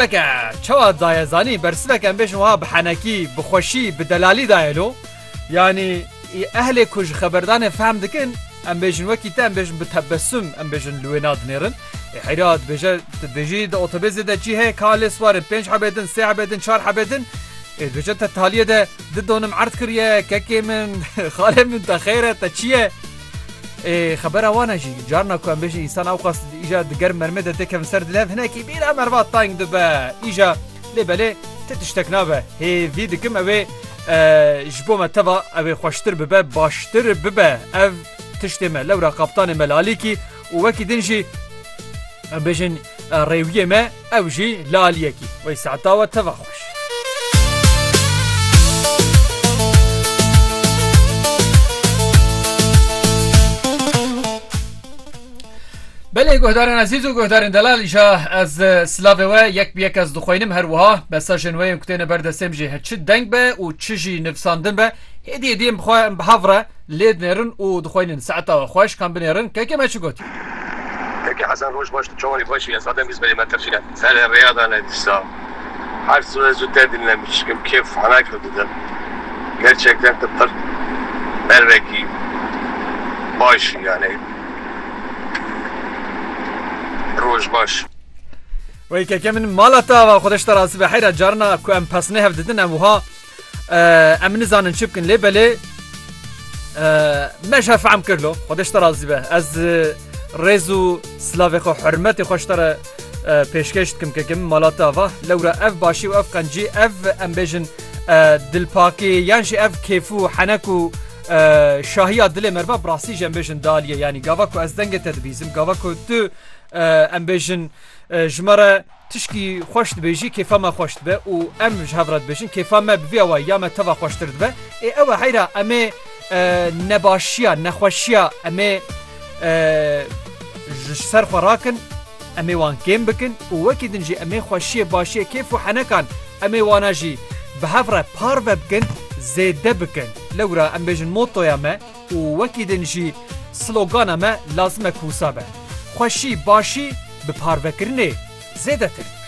Eke çawa daye zanî bersivek em bêjin wiha bi henekî, bi xweşî, bi delalî daye lo. Yanî ehlê ku ji xeberdanê fehm dikin em bêjin wekî te em bêjin bi tebesum em bêjin li wê nadinêrin. Ê heyra dibêje tu bêjî di otobêzê de çî heye ka lê siwarin pênc hebê din, sê hebê din, çar hebê din. Ê dibêje te taliyê de di donim erd kiriye kekê min, xalê min te xêr e te çi ye? Ê xebera wan e jî. Carna ku em bêjin însan awqas di îja di germ mermê de tê kevin ser dilhev hinekî bîra merva tayng dibe. Îja lê belê ti tiştek nabe. Hêvî dikim ew ê ji bo me teva ew ê xweştir bibe baştir bibe. Ev tiştê me lewra kaptanê me Lalîkî û wekî din jî em bêjin Rêwiyê me ew jî laliyekî wey saeta we teva xweş. Belê guhdarên ezîz û guhdarên delal îşa ez silavê we yek bi yek ez dixwînim her wiha besa jin weyên ku têne ber destêm jî çi deng be û çi jî nivsandin be Hêdî hêdî em bi xwe em bi hev re lê dinêrin û dixweynin saeta we xweş kan binêrin keke me çi got. Keke Hesen roj baş tu çawanê xweş î ez zaten bîst belê me tirkîne. Selê rêya dane dîsa her zû ez zûter dinlem îşkim kêf hana kir didim gerçekten tu pir mervekî baş î yanê roj baş. Wey keke min mala te ava xwedeş te rasîbe heyra carina ku em pesnê hev didin em wiha Em nizanin çi bikin lê belê me jî fehm kirlo Xwedê ji te razî be ez rêz û silavê xwe hurmetê xwe ji te re pêşkêş dikim kekim mala te ava lewra ev başî û ev qencî ev em bêjin dilpakê yan jî ev kêf û henek û şahiya dilê me ba bi rastî jî em bêjin daliye yanî gava ku ez dengê te dibîzim gava ku tu em bêjin ji me re Tişkî xweş dibêjî kêfa me xweş dibe û em ji hev re dibêjin kêfa me bi vî awayî ya me teva xweştir dibe. Ê ew e heyra em ê nebaşiya, nexweşiya em ê ji ser xwe rakin, em ê wan kêm bikin û wekî din jî em ê xweşiyê, başiyê, kêf û henekan em ê wana jî bi hev re parve bikin, zêde bikin. Lewra em bêjin motoya me. Û wekî din jî slogana me lazim e ku wisa be, Xweşî, başî bi parvekirinê zêdetir dibe.